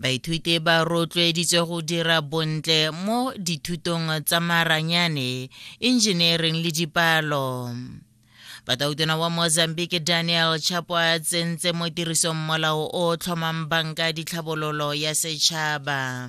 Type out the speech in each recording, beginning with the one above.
Baithuti ba rotloeditswe go dira bontle mo dithutong tsa maranyane, engineering le dipalo. Batautona wa Mozambique Daniel Chapo a tsentse mo tirisong molao o tlhomang banka ditlhabololo ya setšhaba.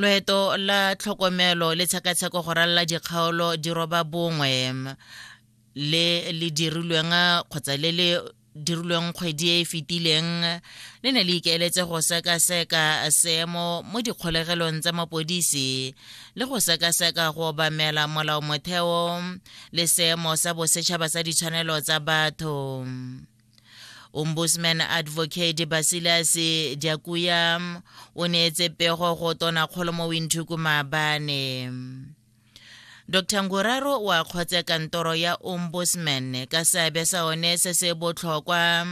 loeto la tlhokomelo le tshekatsheko go ralala dikgaolo di roba bongwe le le dirilweng kgotsa le le dirilweng kgwedi e e fetileng le ne le ikaeletse go sekaseka seemo mo dikgolegelong tsa mapodisi le go sekaseka go obamela molao motheo le seemo sa bosetšhaba sa ditshwanelo tsa batho ombudsman advocate basilas diakuya o neetse pego go tona kgolo mo winthuku maabane dr nguraro o akgotse kantoro ya ombudsman ka seabe sa one se se botlhokwa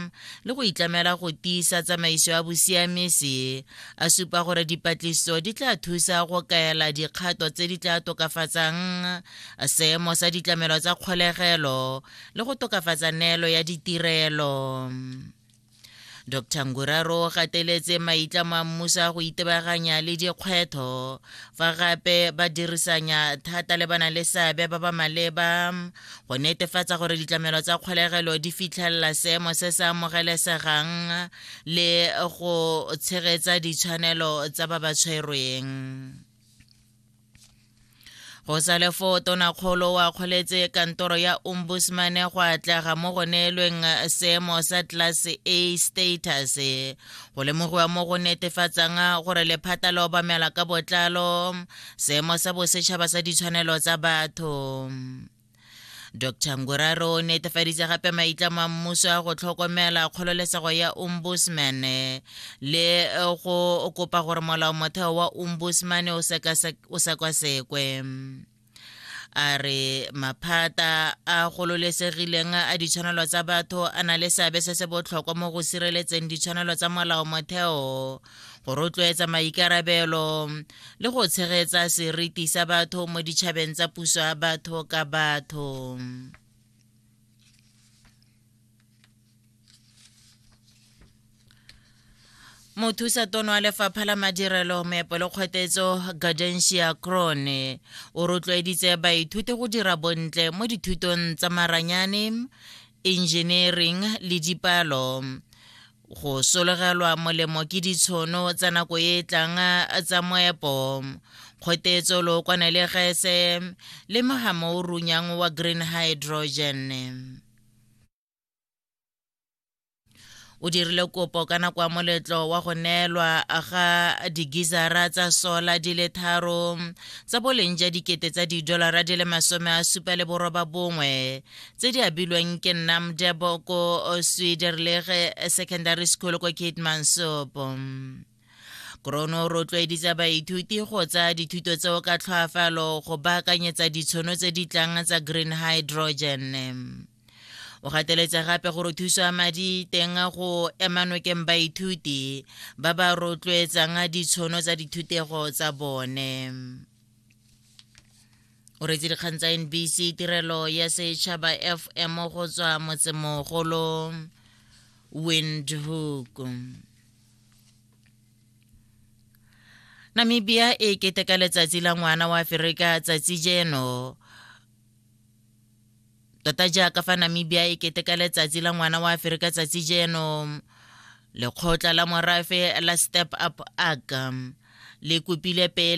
le go itlamela go tiisa tsamaiso ya bosiamisi a supa gore dipatlisiso di tla thusa go kaela dikgato tse di tla tokafatsang seemo sa ditlamelo tsa kgolegelo le go tokafatsa neelo ya ditirelo dr nguraro o gateletse maitlamo a mmuso a go itebaganya le dikgwetho fa gape ba dirisanya thata le bana le seabe ba ba maleba go netefatsa gore ditlamelo tsa kgolegelo di fitlhelela seemo se se amogelesegang le go tshegetsa ditshwanelo tsa ba ba tshwerweng go sa le foo tonakgolo wa kgoletse kantoro ya ombudsman go atlega mo go neelweng seemo sa class a status go lemogiwa mo go netefatsang gore lephata le obamela ka botlalo seemo sa bosetšhaba sa ditshwanelo tsa batho dr nguraro o netefaditse gape maitlamo a mmuso a go tlhokomela kgololesego ya ombudsman le eh, go kopa gore molao motheo wa ombudsman o sekasekwe a re maphata a gololesegileng a ditshwanelo tsa batho a na le seabe se se botlhokwa mo go sireletseng ditshwanelo tsa molao motheo go rotloetsa maikarabelo le go tshegetsa seriti sa batho mo ditšhabeng tsa puso ya batho ka batho mothusa tono wa lefapha la madirelo meepo le kgwetetso gardensia crone o rotloeditse baithuti go dira bontle mo dithutong tsa maranyane engineering le dipalo go solegelwa molemo ke ditshono tsa nako e e tlang tsa moepo kgotetso lookwane le gese le mogamo o runyang wa green hydrogen o dirile kopo ka nako ya moletlo wa go neelwa ga digizara tsa sola di le tharo tsa boleng ja dikete tsa didolara di le masome a supa le boroba bongwe tse di abilweng ke nnamdebo ko swederlege secondary school ko kitmansopo krono o rotloeditsa baithuti go tsaya dithuto tseo ka tlhoafalo go baakanyetsa ditshono tse di tlang tsa green hydrogen o gateletse gape gore thuso ya madi teng go emanokeng baithuti ba ba rotloetsang ditshono tsa dithutego tsa bone o retse dikgang tsa nbc tirelo ya setšhaba fm go tswa motsemogolo windhoek namibia e keteka letsatsi la ngwana wa aferika tsatsi jeno tota jaaka fa namibia e keteka letsatsi la ngwana wa aferika tsatsi jeno lekgotla la morafe la step up aga le kopile pele